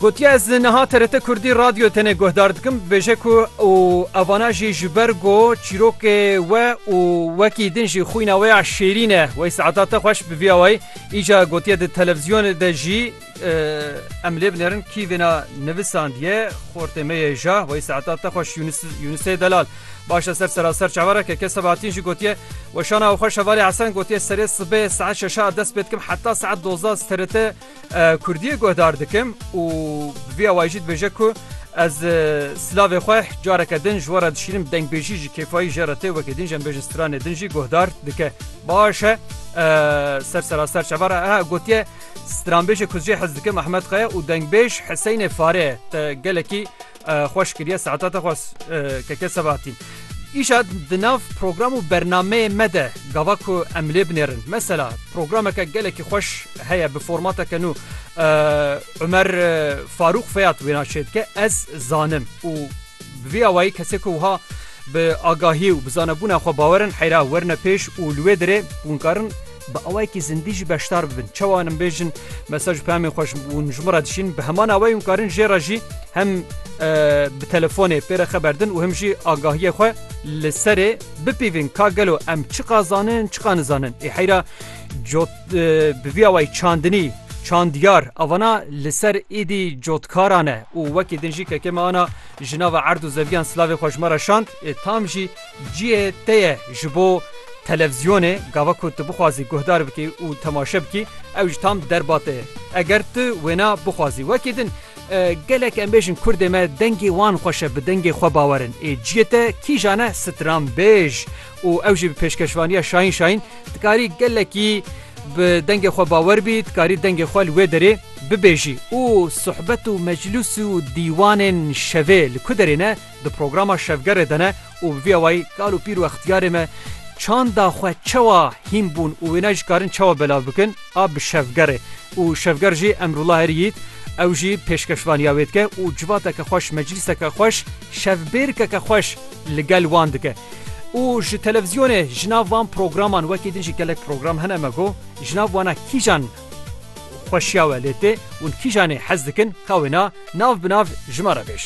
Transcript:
Gotiye ez niha TRT Kurdî radyo tenê guhdar dikim dibêje ku û evana jî ji ber ku çîrokê we û wekî din jî xwîna wê ya şêrîn e wey saeta te xweş bi vî awayî îca gotiye di televîzyonê de jî em lê binêrin kî vêna nivisandiye xortê me yê ja wey saeta te xweş Yunusê Delal. Baş e ser seraser çavereke ke Sebahattin jî gotiye, Weşana xwe Şevalê Esen gotiye serê sibê saet şeşa ez dest pê dikim heta saet dozda ez TRT Kurdiyê guhdar dikim û bi vî awayî jî dibêje ku ez silavê xwe careke din ji we re dişînim dengbêjî ji kêfayî jê re tê wekî din jî em bêjin stranê din jî guhdar dike. Baş e ser seraser çaver e gotiye stranbêjê ku ez jê hez dikim Ehmed Kaya û dengbêj Hiseyne Fare ye te gelekî Xweş kiriye saeta te xwes keke sebahatî. Îşa di nav program û bernameyê me de gava ku em lê binêrin. Mesela programeke gelekî xweş heye bi formateke nû Umer Farûq Feyat wêna çê dike ez zanim û bi vî awayî kesê ku wiha bi agahî û bi zanebûna xwe bawerin heyra werine pêş û li wê dirê hûn karin bi awayekî zindî jî beşdar bibin çawa nin bêjin mesaj pemê xweş hûn ji min re dişîn bi heman awayî hûn karin jê re jî hem bi telefonê pê re xeberdin û him jî agahiye xwe li serê bipîvin ka gelo em çiqa zanin çiqa nizanin ê heyra cot bi vî awayî çandinî çandiyar avana li ser êdî cotkaran e û wekî din jî kekê me ana ji nava erd û zeviyan silavê xweşmara şand ê tam jî Cihê te ye ji bo televziyonê gava ku tu bixwazî guhdar bikî û temaşe bikî ew ji tam derba te ye. Eger tu wêna bixwazî wekî din gelek em bêjin kurdê me dengê wan xweş e bi dengê xwe bawer in ê cihê te kîjan ne stranbêj û ew jî bi pêşkeşvaniya Şahin Şahin dikarî gelekî bi dengê xwe bawer bî dikarî dengê xwe li wê derê bibêjî û suhbet û meclûs û dîwanên şevê li ku derê ne Di programa Şevgerê de ne û bi vî awayî kal û pîr û extiyarê me çanda xwe çewa hîn bûn û wênayê ji karin çewa belav bikin a bi Şevgerê û Şevger jî Emrullah Herî Yît ew jî pêşkeşvaniya wê dike û civateke xweş meclîseke xweş şevbêrkeke xweş li gel wan dike û ji televîzyonê ji nav van programan wekî din jî gelek program hene me got ji nav wana kîjan xweşiya we lê tê û kîjanê hez dikin ka wêna nav bi nav ji me re bêj.